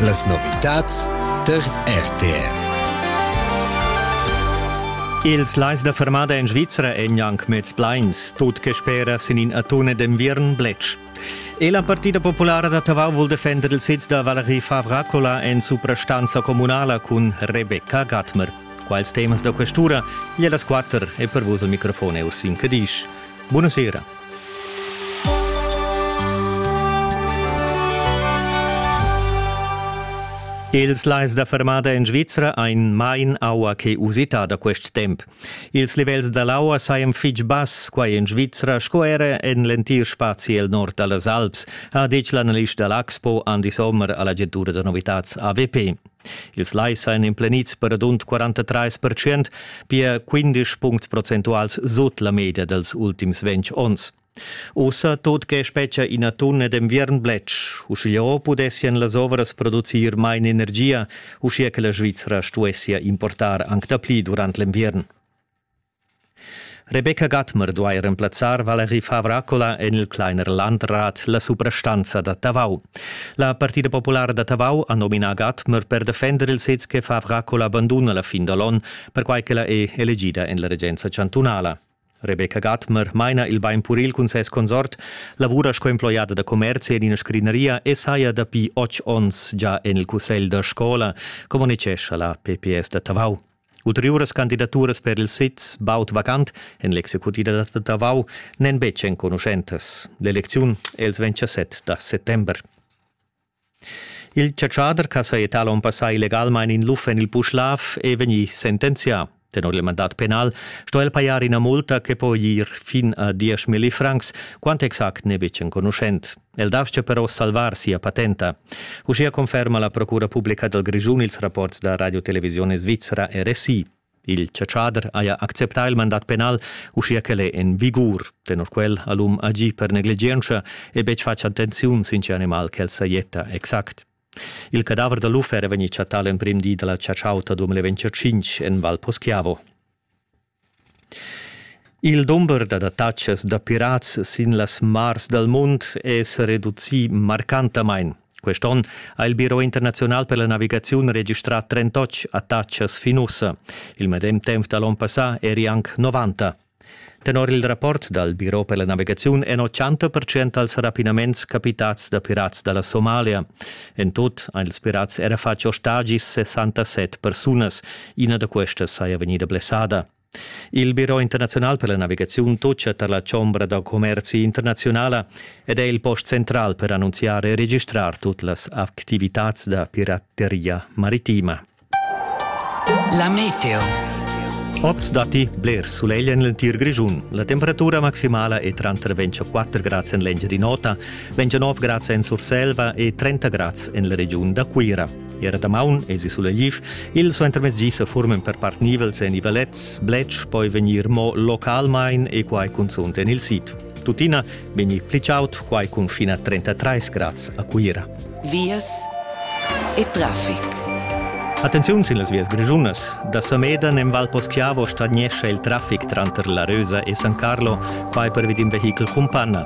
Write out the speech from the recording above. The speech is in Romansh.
Las novitads tar RTR. Ils lais da fermada en Svizra èn anc mez plains, tut che spera sin in atun d'enviern bletsch. E la Partida Populara da Tavau vul defender il sitz da Valerie Favracola en suprastanza communala cun Rebecca Gatmer. Quals temas da questura? Gli las quatter e per vos al microfon Ursin Cadisch. Buonasera. Ils lais da fermada en Svizra ein mein aua che usita da quest temp. Ils livels dall'aua sajan fitg bass quai en Svizra sco era en l'entir spazi el nord dallas Alps, ha detg l'analist dall'Axpo Andi Sommer alla agentura da novitads AWP. Ils lais ein emplenids per radund 43 percent, pia 15 puncts procentuals sut la media dals ultims ventg onns. Ussa tut che spetga ina tunna d'enviern bletsch, uschigliò pudessien las ovras producir main energia, uschia che la Svizra stuessia importar anc dapli durant l'enviern. Rebecca Gatmer duai remplazzar Valerie Favracola en il Kleiner Landrat, la suprastanza da Tavau. La Partida populara da Tavau ha nominà Gatmer per defender il sez che Favracola banduna la fin da l'onn, perquai ch'ella è elegida en la regenza chantunala. Rebecca Gatmer maina il bainpuril cun ses consort, lavura sco emploiada da commerzi en ina scrigneria e saja dapi otg onns già en il cussegl da scola, communicescha la PPS da Tavau. Ulteriuras candidaturas per il sez baud vacant en l'executiva da Tavau n'èn betg enconuschentas. L'elecziun è il 27 da settember. Il chatschader ch'ha sajettà l'onn passà illegalmain in luf en il Puschlav è vegnì sentenzià. Tenor il mandat penal sto el pajar ina multa che po ir fin a dieschmilli francs. Quant exact n'è betg enconuschent. El dastga però salvar sia patenta. Uschia conferma la Procura publica dal Grischun ils rapports da Radio Televisione Svizzera RSI. Il chatschader haja acceptà il mandat penal, uschia ch'el è en vigur. Tenor quel ha l'um agì per negligientscha e betg fatg attenziun sin tge animal ch'el sajetta exact. Il cadaver da l'uffer è vegnì chattà l'emprim di da la chatschauta 2025 en Val Poschiavo. Il dumber d'adattatschas da pirats sin las mars dal mund è sa reducì marcantamain. Quest onn ha il Biro internaziunal per la navigaziun registrà 38 attacchas fin ussa. Il medem temp da l'onn passà eri anc 90. Tenor il rapport dal Biro per la navigaziun èn 80% als rapinaments capitads da pirats da la Somalia. En tut han ils pirats era fatg ostagis 67 persunas, Ina da questas saja vegnida blessada. Il Biro internaziunal per la navigaziun toccia tar la chombra da commerzi internaziunala ed è il post central per annunziar e registrar tut las activitads da pirateria maritima. La meteo. Oz datti bler sulegl en l'entir Grischun. La temperatura maximala è tranter 24 grads en l'Engiadin'Ota, 29 grads en Surselva e 30 grads en la regiun da Cuira. Era damaun esi sulegliv, il suentermezdi sa furmen per part nivels en i valets, bletsch poi vegnir mo localmain e quai cunzunt en il sid. Tuttina vegni pli chaud, quai cun fin a 33 grads a Cuira. Vias e traffic. Attenziun sin las vias grischunas. Da Samedan en Val Poschiavo stagnescha il traffic tranter La Rösa e San Carlo, quai per vid in vehichel cun panna.